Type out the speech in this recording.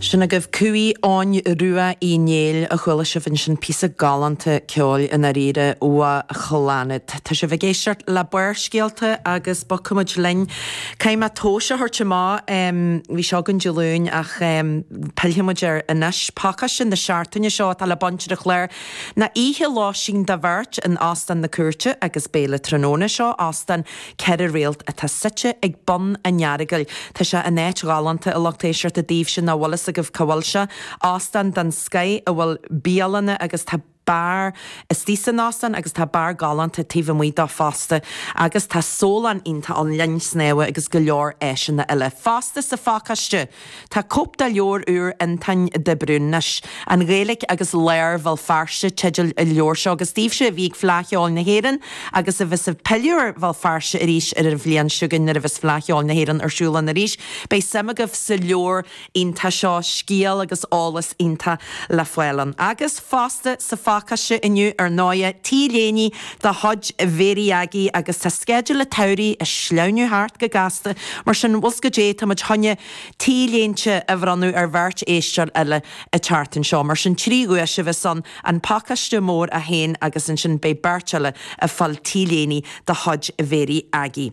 Sin agaibh Cumha Eoghain Rua Uí Néill a chuala sibh ansin, píosa galánta ceoil i ndáiríre ó Chlannad. Tá sibh ag éisteacht le Barrscéalta agus bogfaimid linn. Caithfidh mé tomhas a thabhairt amach, bhí seo againn Dé Luain ach pillfimid air anois. Pacáiste na seachtaine seo atá le baint ar an chlár ná oíche lóistín do bheirt in Óstán na Cúirte agus béile tráthnóna. Seo Óstán ceithre réalt atá suite ag bun an Earagail. Tá sé in áit ghalánta a lucht éisteachta daoibhse nach bhfuil fhios agaibh cá bhfuil sé. Óstán den scoith a bhfuil bialanna agus tá beár istigh san óstán agus tá beár galánta taobh amuigh dó fosta agus tá sólann iontach ann, linn snámha agus go leor áiseanna eile fosta sa phacáiste! Tá cóip de leabhar úr Fhionntáin de Brún, anois, An Ghaeilic agus Lár Bhéal Feirste teideal an leabhair seo, agus daoibhse a bhí ag Fleadh Cheoil na hÉireann agus a bheas ag pilleadh ar Bhéal Feirste arís ar an bhliain seo chugainn nuair a bheas Fleadh Cheoil na hÉireann ar siúl ann arís, beidh suim agaibh sa leabhar iontach seo, scéal agus eolas iontach le fáil ann. Agus. fosta sa phacáiste inniu ar ndóigh, t-léine de chuid Mhary Aggie agus tá sceideal a' tsamhraidh a' sleamhnú thart go gasta mar sin bhfuil 's goidé tá muid chun na t-léinte a bhronnadh ar bheirt éisteoir eile a' tseachtain seo mar sin trí dhuais a bheas ann, an pacáiste mór 1 agus ansin beidh beirt eile a' fáil t-léine de chuid Mhary Aggie.